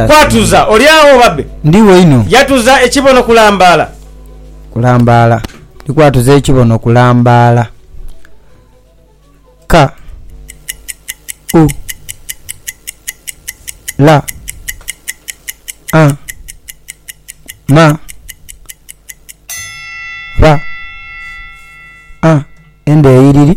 Kwatuza oli agho babe. Yatuza ekibono kulambaala. Kulambaala. Ndi kwatuza ekibono kulambaala. Ka. U. La. A. Ma. Ba. A. Endhoyiriri.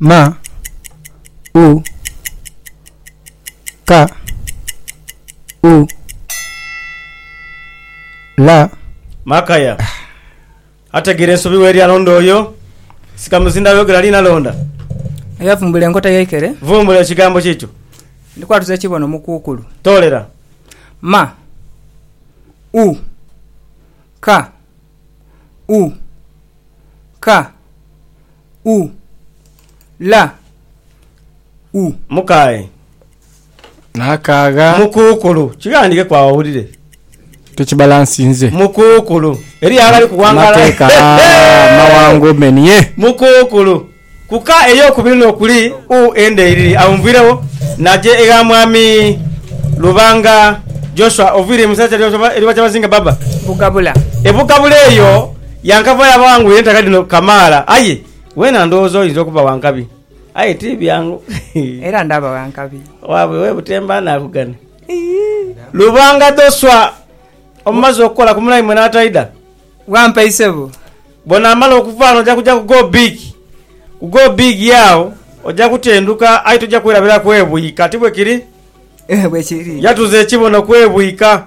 ma, u, ka, u, la. Makaya ategeera ensobi w'eri alonda oyo, Sikamuzinda ayogera ali nalonda. Oyo avumbula enkota y'eikere. Vumbula ekigambo kiikyo. Ndi kwatuza ekibono mu kuukulu. Toolera. Ma, u, ka, u, ka. u, la, u. Mukae. Naakaagha. Mukuukulu. Kighandhikeku agho owulire. Tukibalansinze. Mukuukulu. Eriyo aghali kuwangala. Amateeka amawango menye. Mukuukulu. Ku ka ey'okubiri no kuli u enda eiriri agho nviiregho naja egha Mwami Lubanga Joshua oviire mu isaza lya Kyabazinga Baba. Bugabula. E Bugabula eyo. Yankavayo abangwire entaka dhino kamaala, aye weena ndowooza oyinza okuba wa nkabi. Aye ti byangu. Era ndaba wa nkabi. Waabwe we butemba anaakugana. Lubanga Dhoswa, omumaze okukola ku mulaimwe n'ataidha? Wampa isebo. Bw'onaamala okuva ghano oja kuja ku Go Big. Ku Go Big ye agho oja kutenduka aye toja kwerabira kwebwika. Ti bwe kiri? Bwe kiri. Yatuza ekibono kwebwika.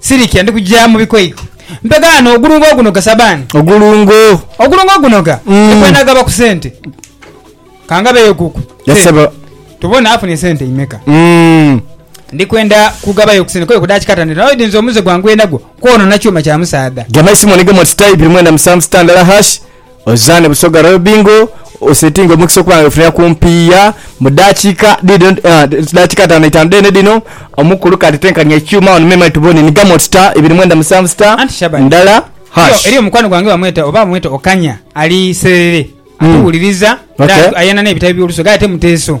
Sirikya ndi kugya mu bikoiko. Mpegaano ogulungo ogunoga sabaani. Ogulungo. Ogulungo ogunoga ni kwenagaba ku sente. Kangabeyo kuku sente. Tubone afunye sente imeka. Ndi kwenda kugabayo ku sente kwoyo kudaaki katandhiro naye oidhinza omuze gwange gwenagwo kwoonona kyuma kya musaadha. Gema isimoni gema oti type mwenda musanvu sita ndala hash. Ozane Busoga Royal Bingo osetinge omukisa okuba nga wefunira ku mpiiya mu dakiika dhidho ah, dakiika ataano itaanu dheene dhino. Omukulu kati tenkania ekyuma wano me mate tubone ni Gamot star ibiri mwenda musanvu star Anti Shaban. ndala Eriyo, hash. eriyo mukwano gwange bamweta oba bamweta Okanya ali Serere Mm. atuwuliriza era Okay. ayana n'ebitabo by'olusoga aye ate muteeso